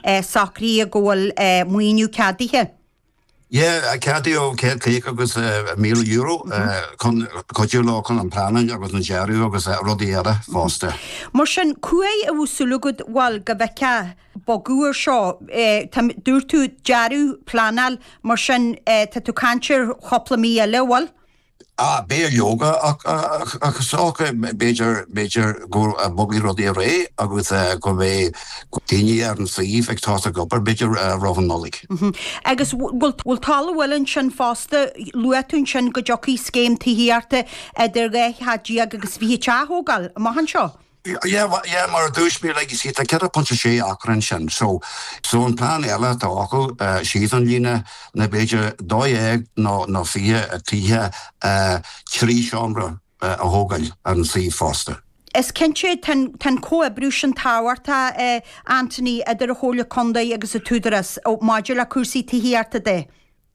Socraíodh go bhfuil maoiniú ceadaithe. Yeah, ceadaíodh céad caoga agus míle euro chun cuidiú leo chun an pleanáil agus an dearadh agus rudaí eile fosta. Mar sin, cá huair a bhfuil súil agat, bhuel, go bhfeicfeá, bogadh ar seo. Tá, dúirt tú dearadh, pleanáil, mar sin tá tú caint ar chúpla mí eile, bhfuil? Ah, b'fhéidir leoga ach, ach sách, b'fhéidir, b'fhéidir go mbogfaidh rudaí ar aghaidh agus go mbeidh daoine ar an suíomh ag tosnú ag obair b'fhéidir roimh an Nollaig. Agus bhfuil talamh bhfuil ansin fosta, luaigh tú ansin go dtiocfaidh scéim tithíochta idir dhá theach déag agus fiche teach a thógáil, amach anseo? Yeah yeah mar a dúirt mé like you see tá 4.6 acra ansin so so an plean eile atá acu síos an líne ná b'fhéidir 12 nó nó 20 tithe trí seomra a thógáil ar an suíomh fosta. Is cinnte tá an comhoibriú sin tábhachtach a Anthony idir an Chomhairle Contae agus an tÚdarás maidir le cúrsaí tithíochta de.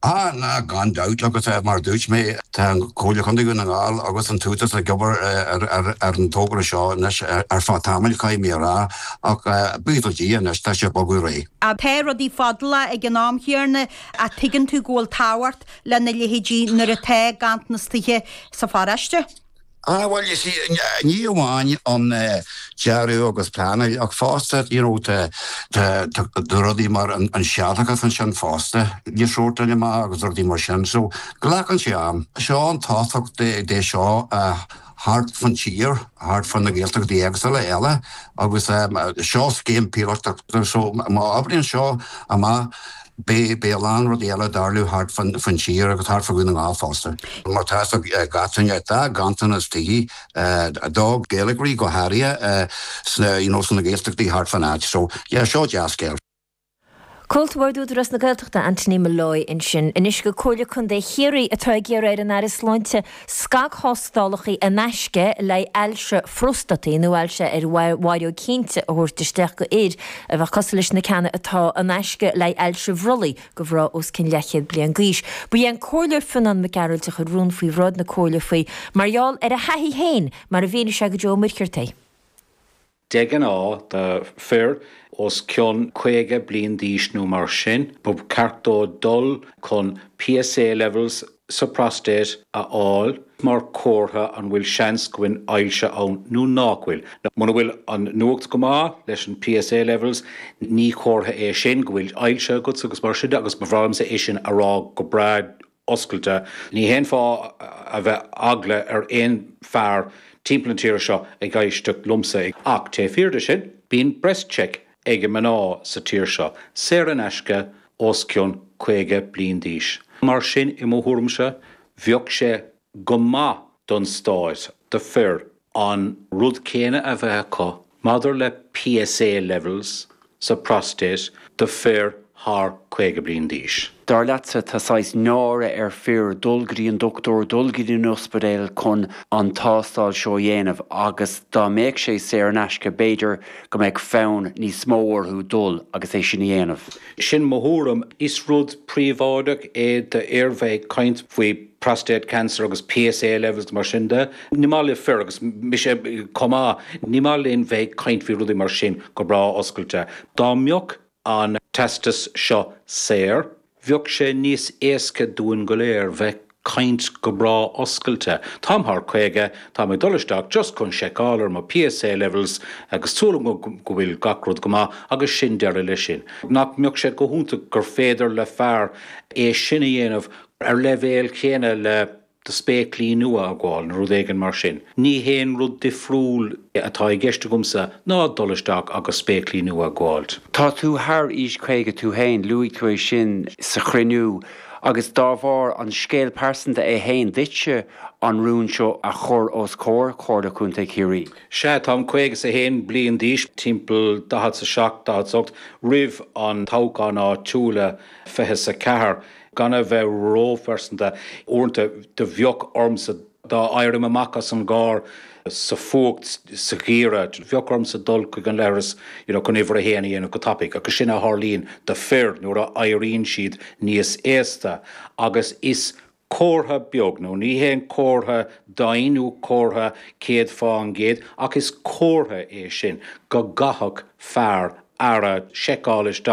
Á, ná, gan dabht, agus mar a dúirt mé, tá an Comhairle Chontae Dhún na nGall agus an tÚdarás ag obair ar an tógra seo anois ar feadh tamaill, caithfidh mé a rá, ach buíochas le Dia anois, tá sé ag bogadh ar aghaidh. Tá rudaí fadálach ag an am chéanna, á tuigeann tú go bhfuil tábhacht lena leithéidí nuair atá ganntanas tithe sa pharóiste. Ah bhuel you see ní amháin an dearadh agus pleanáil ach fosta you know tá rudaí mar an séarachas ansin fosta le sórtáil amach agus rudaí mar sin so glacann sé am. Seo an tábhacht de seo a thart fán tír, thart fá na Gaeltachtaí éagsula eile agus seo scéim píolótach so má oibríonn seo amach Beidh a lán rudaí eile ag tarlú thart fán tír agus thart fá Dhún na nGall fosta. Mar tá a fhios ag gach duine tá ganntanas tithe, do Ghaeilgeoirí go háirithe, sna Gaeltachtaí thart fán áit. So, yeah, seo dea-scéal. Comhalta Bhord Údarás na Gaeltachta, Anthony Molloy ansin. Anois go Comhairle Contae Chiarraí atá ag iarraidh ar an Aire Sláinte Scagthástálacha in aisce le haghaidh ailse phróstataigh nó ailse ar an bhfaireog cinnte a thabhairt isteach do fhir a bheadh cosúil leis na ceanna atá in aisce le haghaidh ailse bhrollaigh do mhná os cionn leathchéad bliain d'aois. Ba é an Comhairleoir Fionnán Mac Gearailt a chuir rún faoi bhráid na Comhairle faoi mar gheall ar a thaithí féin mar a mhínigh sé do Joe Ó Muircheartaigh. De ghnáth, do fir os cionn 50 bliain d'aois nó mar sin, ba cheart dóibh dul chun PSA levels sa prostate a fháil mar chomhartha an bhfuil seans go bhfuil ailse ann nó nách bhfuil. Muna bhfuil an nuacht go maith leis an PSA levels, ní comhartha é sin go bhfuil ailse agat agus mar sin de agus ba bhreá liomsa é sin a rá go breá oscailte. Níl aon fáth a bheith eagla ar aon fear timpeall na tíre seo ag éisteacht liomsa ach té fíor de sin. Bíonn BreastCheck ag mná sa tír seo, saor in aisce, os cionn 50 bliain d'aois. Mar sin, i mo thuairimse, bheadh sé go maith don stát, do fir an rud céanna a bheith acu maidir le PSA levels sa prostate do fir thar 50 bliain d'aois. Dar leatsa, tá saghas náire ar fir dul go dtí an dochtúir, dul go dtí an t-ospidéal chun an tástáil seo a dhéanamh agus dá mbeadh sé saor in aisce b'fhéidir go mbeadh fonn níos mó orthu dul agus é sin a dhéanamh. Sin mo thuairim. Is rud príobháideach é d'fhir bheith ag caint faoi. prostate cancer agus PSA levels mar sin de. Ní maith le fir agus mise chomh maith, ní maith linn bheith ag caint faoi rudaí mar sin go breá oscailte. Dá mbeadh an test seo saor, bheadh sé níos éasca dúinn go léir bheith ag caint go breá oscailte. Táim thar caoga, táim ag dul isteach just chun seiceáil ar mo PSA levels agus súil agam go bhfuil gach rud go maith agus sin deireadh le sin. Nach mbeadh sé go hiontach gur féidir le fear é sin a dhéanamh ar leibhéal chéanna le do spéaclaí nua a fháil nó rud éigin mar sin. Níl aon rud difriúil atá i gceist agamsa ná dul isteach agus spéaclaí nua a fháil. Tá tú thar aois 50 tú fhéin, luaigh tú é sin sa chruinniú, agus dá bharr, an scéal pearsanta é fhéin duitse an rún seo a chur os comhair Chomhairle Contae Chiarraí? Sea, táim caoga is a haon bliain d'aois, timpeall daichead 's a seacht, daichead 's a hocht, roimh an toghchán áitiúil a fiche 's a ceathair. Gan a bheith ró-phearsanta, uaireanta do bheadh ormsa, dá n-éirím amach as an gcarr sa fuacht sa gheimhreadh, do bheadh ormsa dul chuig an leithreas you know chun uimhir a haon a dhéanamh go tapaidh agus sin a tharlaíonn do fir nuair a éiríonn siad níos aosta agus is comhartha beag, nó ní haon comhartha daingean nó comhartha céad fá an gcéad ach is comhartha é sin go gcaithfeadh fear ar a laghad seiceáil isteach.